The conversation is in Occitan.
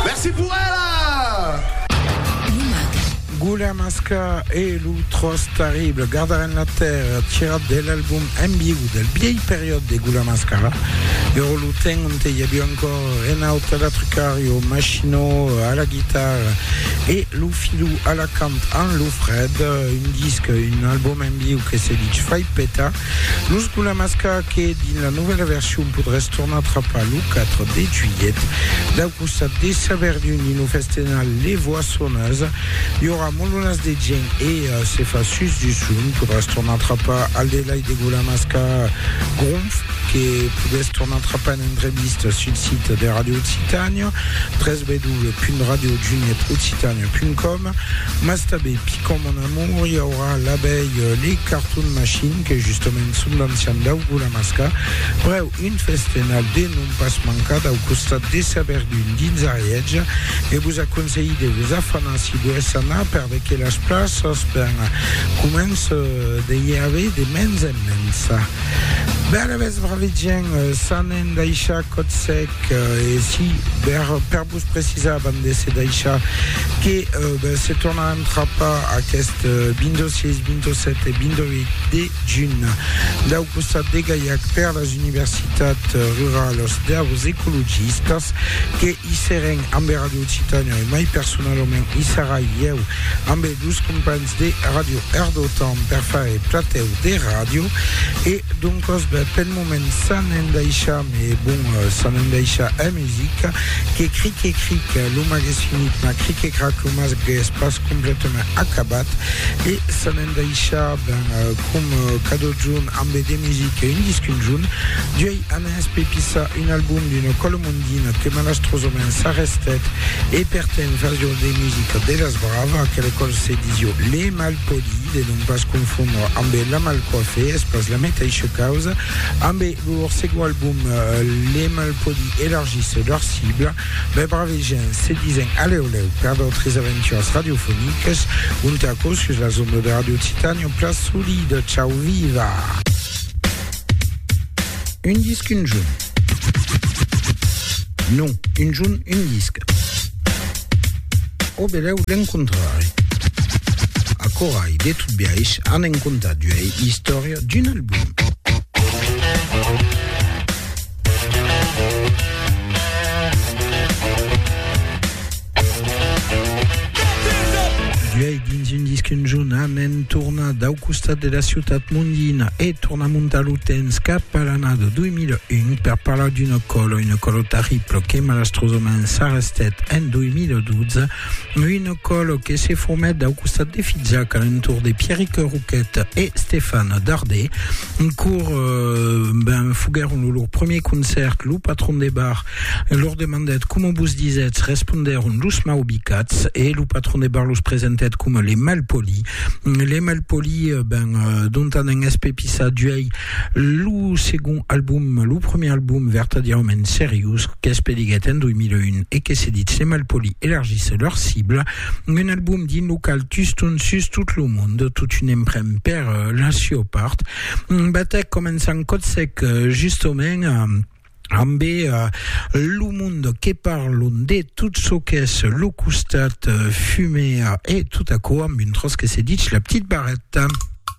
Merci pour ela! Goulen Masca e lo Tròç Tarrible gardaràn la tèrra, tirat de l'album En Viu del bièi periòd de Goulen Masca, ero lo temps onte i aviá encòr Renaud a la trucària, o Machino a la guitarra e lo Filou a la cant amb lo Fred, un disc, un album en viu que se dich fai petar. Lo Sculamasca que dins la novèla version podràs tornar trapar lo 4 de juilhet. Dau costat de Saverdun dins lo festenal Les Voissonneuses i aurà molonas de gent e se fa sus du son podràs tornar trapar al delai de Gulamasca Gronf que podètz tornar trapar en entrevista sul sit de Radio Occitània www.radiojunietoccitania.com mas tanben picòm mon amour i aurà l'abelh le cartoon machine que justament son d'ancian dau gulamasca prèu un festenal de non pas mancar dau costat de sa verdun dins ariètge e vos aconselhi de vos afanar si volètz anar perveque las plaças ben començ de i aver de mens en mens ben avètz bravet gent s'anèn daishar còt sec e si per Vos precisàvem de se daishar que se torna entrapar aqueste 26, 27 e 28 de junh dau costat de Gaiac per las universitats ruralas daus ecologistas que i serem amb e Radio Occitània e mai personalament i sarai ieu amb e dus companhs de Radio Erdotan per far e platèu de ràdio e doncas ben pel moment ça n'en daisham e bon ça n'en daisham Music, que cric e cric, lo mag es finit, mas cric e crac, lo mag es pas completament acabat, e se n'en daisha ben com cadotjun ambe de music e un disc un junh, d'uei anés pe pisa un album d'una còla mondina que malastrosament s'arrestèt e per temps fasió de music de las brave, aquela còla se disió le malpoli, de non pas confondre ambe la malcoife, es pas la metaisha causa, ambe. Lor segon album Le Malpoli elargisse lor cibla, mai braves gents se disen alèu lèu per d'autres aventuras radiofonicas, ont aquò sus las ondas de Radio Titanium, Place Solide, Ciao Viva! Un disc, un junt. Non, un junt, un disc. Au belèu l'encontrare. Aquò ai, de tot biais, an en comptat d'uei istòria. l'auteur d'un album. Duei dins un disc un jonament torna dau costat de la ciutat mondina e torna montar lo temps cap a l'annada 2001 per parlar d'una còla, una còla terribla que malastrosament s'arrestèt en 2012 Un còl que se formèt dau costat de Fizac a l'entorn de Pierric Roquet e Stefan Dardé, cor ben foguèron lo lor premier concèrt, lo patron de bar lor demandèt coma vos disètz, respondèron los maubicats e lo patron de bar los presentèt coma les malpolis, les malpolis ben dont anèn espepissar d'uèi Lo segond album, lo premier album vertadièrament seriós qu'es pediguèt en 2001 e que se ditz Les Malpolis elargisse leur cible, un album dins lo qual Tuston sus tot lo mond, totun en pren per la sua part, batèc coma un sang còth sec justament ambe lo mond que parlon de tot çò qu'es lo costat fumèr e tot aquò amb un tròç que se ditz La Petite Barrette.